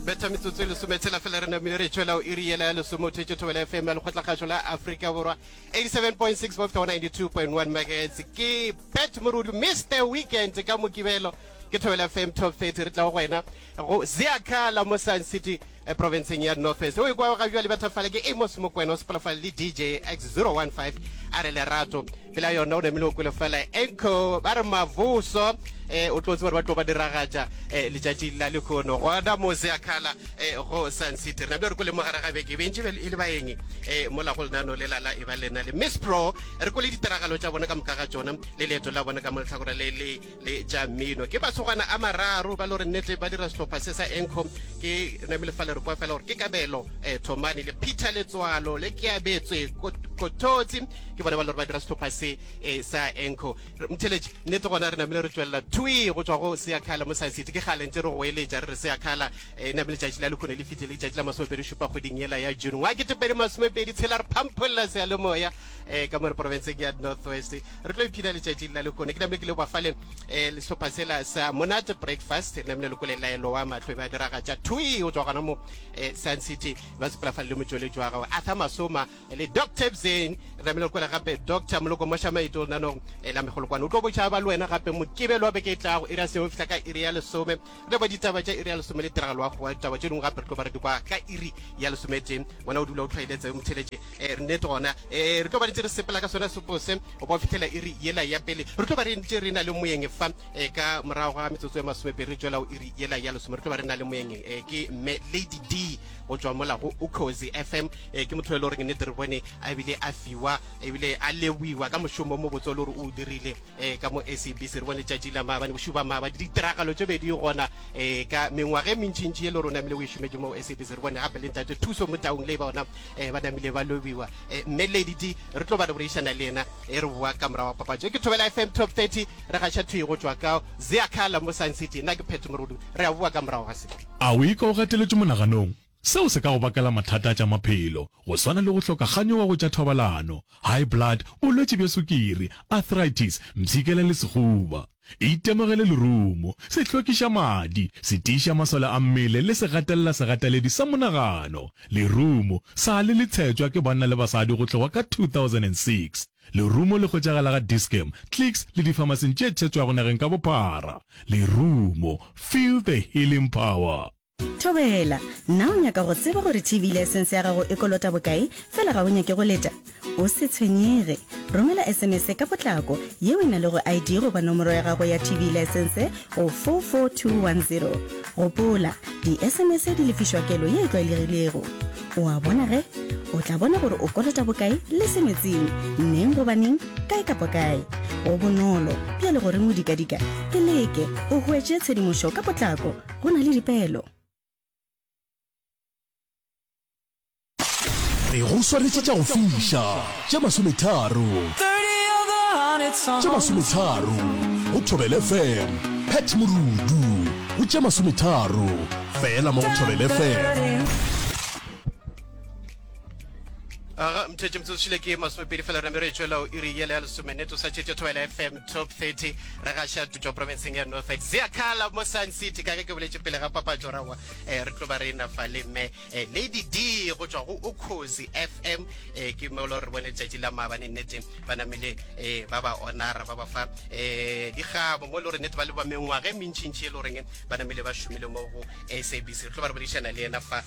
betha metsotso e lesome tshela fela re namile re tšwela o iri yela ya lesome o thetše thobela fm ya lekgotlakgašo la aforika borwa 87.6 bofta 92.1 megahertz ke bet morudu mr weekend ka mokibelo ke thobela fm top 30 re tla go wena go zeakala mo sun city Profenseng ya North West. O ikwago ga bjale batho fale ke Amos Mokwena o sepela fale le DJ X015 a re lerato. Pela yona o namile o kwele fela enko ba re mavuso eh, o tlotse gore ba tlo ba diragatša eh, letšatši la lekhono gona mose a khala eh, go Sun City. Re namile re kwele mogare ga beke bentši be e le baeng eh, mola go lenano le lala e ba lena le Miss Pro re kwele ditiragalo tša bona ka moka ga tšona le leeto la bona ka moletlhakora le le le tša mmino ke masogana a mararo ba lo re nnete ba dira sehlopha se sa encom ke namile fa le re kwa fela gore ke kabelo um thomane le peter letswalo le ke abetswe kototsi ke bone ba le gore ba dira sehlopha se um sa enco mtheletše nnete gona re namile re tswelela twi go tswa go seakhala mo sa sete ke gale ntse re go eletša re re seakhala um e namile tšatši la lekhone le fitlhile tšatši la masomepedi šupa kgweding yela ya june wa ketepedi masomepedi tshela re phampholela seyalemoya um ka mo re porofenseng ya north west re tlo iphina letšatši la lekone ke namne ke le bafale um eh, sehlopha sela sa monate breakfast re namne lekole laelo wa mahlo e ba diragatša thui go tswa gona mo um sun city ba sepela fa le motsweletši wa gago arthur masoma le dr bzen re namne lekole gape dr moloko mošamaito nanong um eh, la megolokwane o tlo bošaba le wena gape mokibelo wa beke e tlago e ra seo fihla ka iri ya lesome Re kwa ditaba tša iri ya lesome le tiragalo wa goa ditaba tše dingwe gape re tlo ba re di kwa ka iri ya lesometee wena o dula o tlhwaeletse o mtheletše eh, nnete gona eh, re tlo ba re tse re sepela ka sona sepo se go ba fitlhela iri yela ya pele re tlo ba re ntše re na le moyeng fa eh, ka morago ga metsotso ya masomepedi re tšwela o iri yela ya lesome re tlo ba re na le moyeng eh, ke mme lady d go tswa mola go ucozy fm eh, ke motho e le goreng nnete re bone a ebile a fiwa ebile a lewiwa ka mošomo mo botse o le gore o o dirile e ka mo SABC re bone tšatši la maabane bošuo ba maabane ditiragalo tše bedi gona e ka mengwaga e mentšintši ye le rona namile o e šometše mo SABC re bone gape le ntate thuso mo taung le ba ona e ba namile ba lobiwa e, mme ledidi re tlo ba re boreišana le yena e re boa ka morago wa papatšo e ke thobela FM top 30 re gaša thwi go tšwa ka zeakhala mo sun city nna ke phetho morolo re a boa ka morago ga se a o ika o gateletše monaganong Seo se ka go bakela mathata a tša maphelo, go swana le go hloka ganyo wa go tša thobalano, high blood, bolwetši bja sukiri, arthritis, mpshikela le sehuba. Itemogele lerumo, sehlokišamadi, setiišamasole a mmele le segatelela-segataledi sa monagano. Lerumo, sa le le tshetšwa ke banna le basadi go tloga ka 2006. Lerumo le hwetšagala ga Dis-Chem, Clicks le difamasing tše tshetšwago nageng ka bophara. Lerumo, feel the healing power! Thobela, Na o nyaka go tseba gore TV license ya gago e kolota bokae fela ga o nyake go leta? O se tshwenyege. Romela sms ka potlako yeo e na lego ID goba nomoro ya gago ya TV license go 44210. Gopola, di-sms di lefišwa kelo ye e tlwaelegilego. O a bona ge? O tla bona gore o kolota bokae le se metsing, neng goba neng, kae kapa kae. Go bonolo, bjale gore modikadika ke leke o hwetše tshedimošo ka potlako. go na le dipeelo. re go swanetše tša go fiša tše masometharo tše masometharo go thobele fm pat morudu go tše masometharo fela mo go thobele fm aga mthetše mtsotsile ke masomepedi fela re mere tšwela o iri yele ya lesomeneto sa tšetše thobela fm top 30 re gaša tutšwa provinceng ya north ex zea kala mo sun city ka ge ke boletše pele ga papatšo rawa um eh, re tlo ba re ena fa le mme eh, lady d go tšwa go okozi fm eh, ke mo lo re bone tšatši la maabane nnete ba namele eh, ba ba onara ba ba fa eh, dikgabo mo lo re nnete ba le ba mengwaga e mentšintši e le goreng ba namele ba šomile mo go sabc re tlo ba re bodišana le ena fa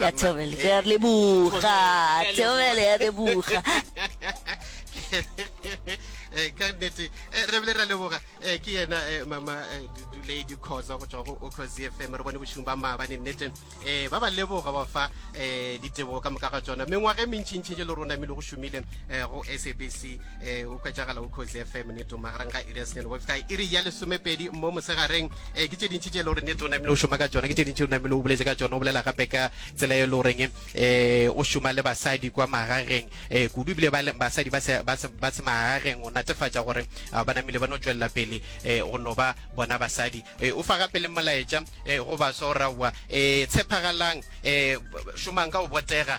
ya thobele re a leboga thobele ya leboga eh, ka nnete eh, re bile ra leboga eh, ke yena mama duledi kgosa go tswa go ocos fm re bone bošong ba maabane nnete um ba ba leboga ba fa um ditebogo ka moka ga tsona mengwaga e mentšhintšhi je le rona mele go šomile go sabc e o kwetsagala o cozy fm ne toma garang ga iri ya senyane go feta iri ya lesomepedi mo mosegareng e ke tse dintši tše e le gore ne tona mele o šoma ka tsona ke tse dintši o namele o boletse ka tsona o bolela gape ka tsela e le goreng um o šoma le basadi kwa magageng um kudu ebile basadi ba se magageng o natefatša gore ba namele ba no tswelela pele um go no ba bona basadi o fa gape le molaetša go baswa o raowa um tshepagalang um šomang ka go botega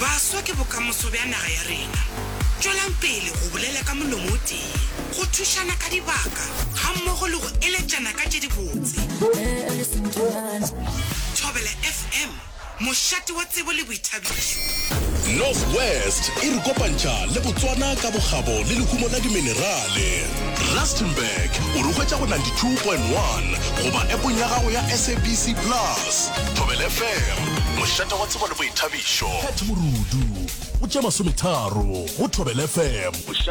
Baswa ke bokamoso bja naga ya rena. Tšwelang pele go bolela ka molomo o tee, go thušana ka dibaka gammogo le go eletšana ka tše dibotse. Thobela FM, mošate wa tsebo le boithabišo. North West e re kopantšha le Botswana ka bokgabo le lehumo la diminerale. Rustenburg o re hwetša go 92.1 goba epong ya gago ya SABC Plus. Thobela FM. Mošate wa tsebo le boithabišo. Pat Morudu, go tše masometharo, go Thobela FM.